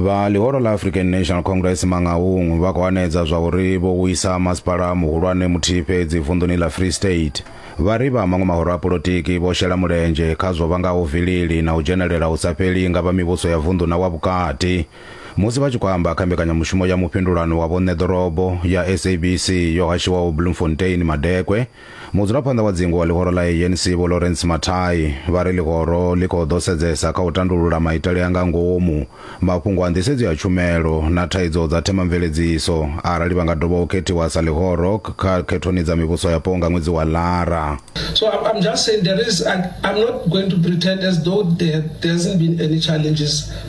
vha ḽihoro ḽa african national congress mangaung vha khou hanedza zwa uri vho wisa masipala muhulwane muthihi fhedzi vunḓuni ḽa free state vha ri vha maṅwe mahoro a polotiki vho shela mulenzhe kha zwo vhangaho vilili na u dzhenelela hu sa fheli nga vha mivhuso ya vunḓu na wa vhukati Musi vha tshi khou amba kha mbekanyamushumo ya mufhindulano wa vhoṋe ḓorobo ya SABC yo hashiwaho Bloemfontein madekwe, mudzulaphanḓa wa dzingu wa ḽihoro ḽa ANC Vho Lawrence Mathai vha ri ḽihoro ḽi khou ḓo sedzesa kha u tandulula maitele a nga ngomu, mafhungo a nḓisedzo ya tshumelo na thaidzo dza themamveledziso arali vha nga dovha u khethiwa sa ḽihoro kha khethoni dza mivhuso yapo nga ṅwedzi wa Lara. So I'm, I'm just saying there is, I, I'm not going to pretend as though there, there hasn't been any challenges.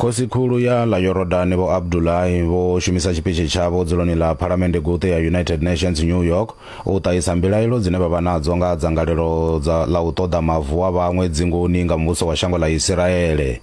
khosikhulu ya ḽa yorodani vho abdulahi vho shumisa tshipitshi tshavho dzuloni ḽa phalamende guṱe ya united nations new york u ṱahisa mbilaelo dzine vha vha nadzo nga dzangalelo ḽa u ṱoḓa mavu a vhaṅwe dzingoni nga muvhuso wa shango ḽa isiraele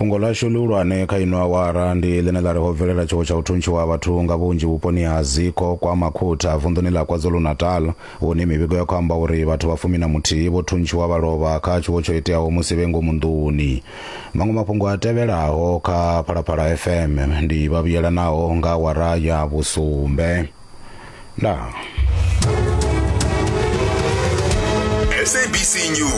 fhungo ḽashu ḽihulwane kha ino awara ndi ḽine ḽa ri ho bvelela tshiwo tsha u thuntshiwa ha vhathu nga vhunzhi vhuponi ha ziko kwa makhutha vunḓuni ḽa kwazulu-natal hune mivhigo ya khou amba uri vhathu vha fumi na muthihi vho thuntshiwa vha lovha kha tshiwo tsho iteaho musi vhe ngomu nḓuni maṅwe mafhungo a tevhelaho kha phalaphala fm ndi vha vhuyelanaho nga awara ya vhusumbe ndaa SABC News.